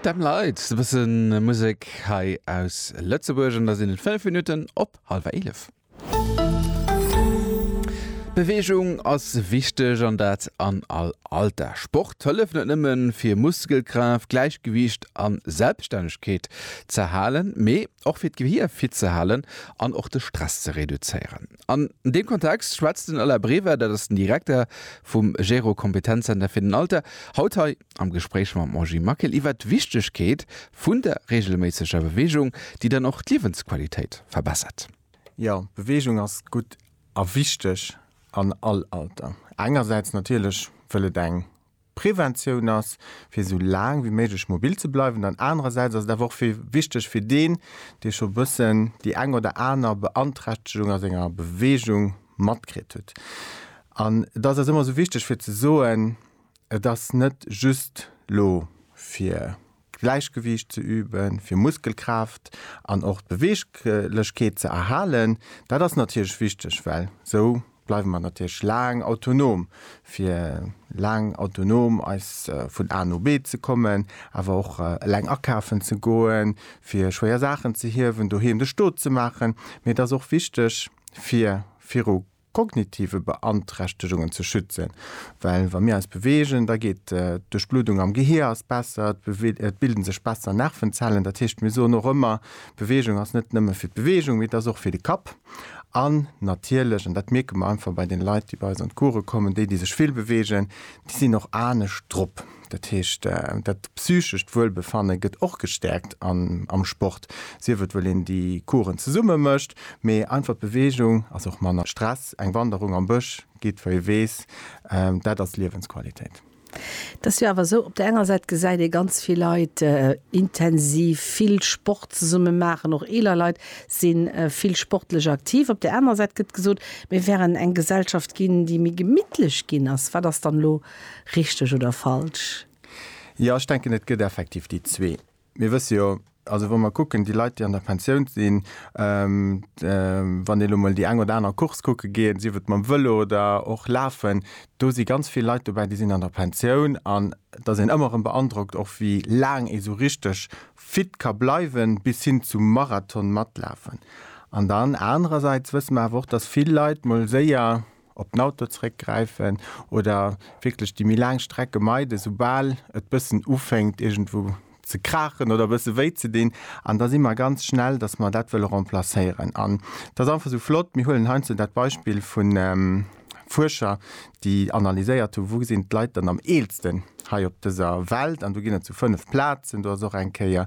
Dem Leit e bësse Musek hei aus Lëtzebuerg an da sinn et 5 Minutten op hallwer 11. Beweegung ass wichteg an dat an all Alter. Sport hëlleft net nëmme fir Muskelkraaft, Gläichgewiicht a Selbststännegkeet z'erhalen, mee och fir d'Gehier fit ze halen an och de Stress ze reduzéieren. An deem Kontext schwätzt den Alain Brever, dat ass den Direkter vum Gero Kompetenzzenter fir den Alter, haut hei am Gespréich mam Angie Maquil iwwert d'Wichtegkeet vun der reegelméisseger Beweegung, déi dann och d'Liewensqualitéit verbessert. Jo, Beweegung ass gutt a wichteg an all Alter. Engersäits natierlech, wëll et eng Preventioun ass, fir esou laang wéi méiglech mobil ze bleiwen an anerersäits ass et awer och wichteg fir deen, dee scho bëssen déi eng oder aner Beanträchtegung a senger Beweegung matkritt huet. An et ass eis ëmmer esou wichteg fir ze soen, et ass net just elo fir. Gläichgewiicht ze üben, fir Muskelkraaft an och d'Beweeglechkeet ze erhalen. Dat ass natierlech wichteg, well esou bleiwe mer natierlech laang autonom, fir laang autonom eis vun A no B ze kommen, awer och eleng akafen ze goen, fir schwéier Saachen ze hiewen, doheem de Stot ze maachen. Mee et ass och wichteg, fir viru kognitive Beanträchtegungen ze schützen, well wa mir eis beweegen, da geet d'Duerchbluddung am Gehier ass besser, et bilde sech besser Nervenzellen. Dat heescht, mir soen och ëmmer, Beweegung ass net nëmme fir d'Beweegung, mee et ass och fir de Kapp. An natierlech, an dat mierke mer einfach bei den Leit, déi bei eis an d'Course kommen, déi, déi sech vill beweegen, déi sinn och anescht drop. Dat heescht, dat psychescht Wuelbefanne gëtt och gestäerkt am Sport, sief et well een déi Coursen zesumme mécht, mee einfach d'Beweegung ass och manner Stress. Eng Wanderung am Bësch geet wou ee weess, dat ass Liewensqualitéit. Et ass jo awer esou, op der enger Säit gesäit ee ganz vill Leit intensiv vill Sport zesumme maachen, och eeler Leit si vill sportlech aktiv. Op der anerer Säit gëtt gesot, mir wären eng Gesellschaft ginn, déi méi gemittlech ginn ass. Wat ass dann elo Richteg oder falsch? Jo, ech denken, et gëtt effektiv déi zwee. Mir wësse jo, also wa mer kucken, déi Leit, déi an der Pensioun sinn, wann ee lo mol déi eng oder aner Course kucke geet, sief et mam Vëlo oder och lafen, do si ganz vill Leit dobäi, déi sinn an der Pensioun. An et ass een ëmmer erëm beandrockt och, wéi laang ee sou richteg fit ka bleiwen, bis hin zum Marathon matlafen. An dann anerersäits wësse mer awer och, dass vill Leit mol séier op den Auto zréck gräifen oder wierklech déi méi laang Strecke meiden, soubal et bëssen ufänkt iergendwou ze kraachen oder bësse wéi ze dinn. An da si mer ganz schnell, datt mer dat wëlle remplacéieren. An et ass einfach esou flott, mir huelen heiansdo dat Beispill vu Fuerscher, déi analyséiert hu wou sinn d'Leit dann am eelsten hei op dëser Welt, an do ginn et sou fënnef Plazen, do ass och eng Kéier,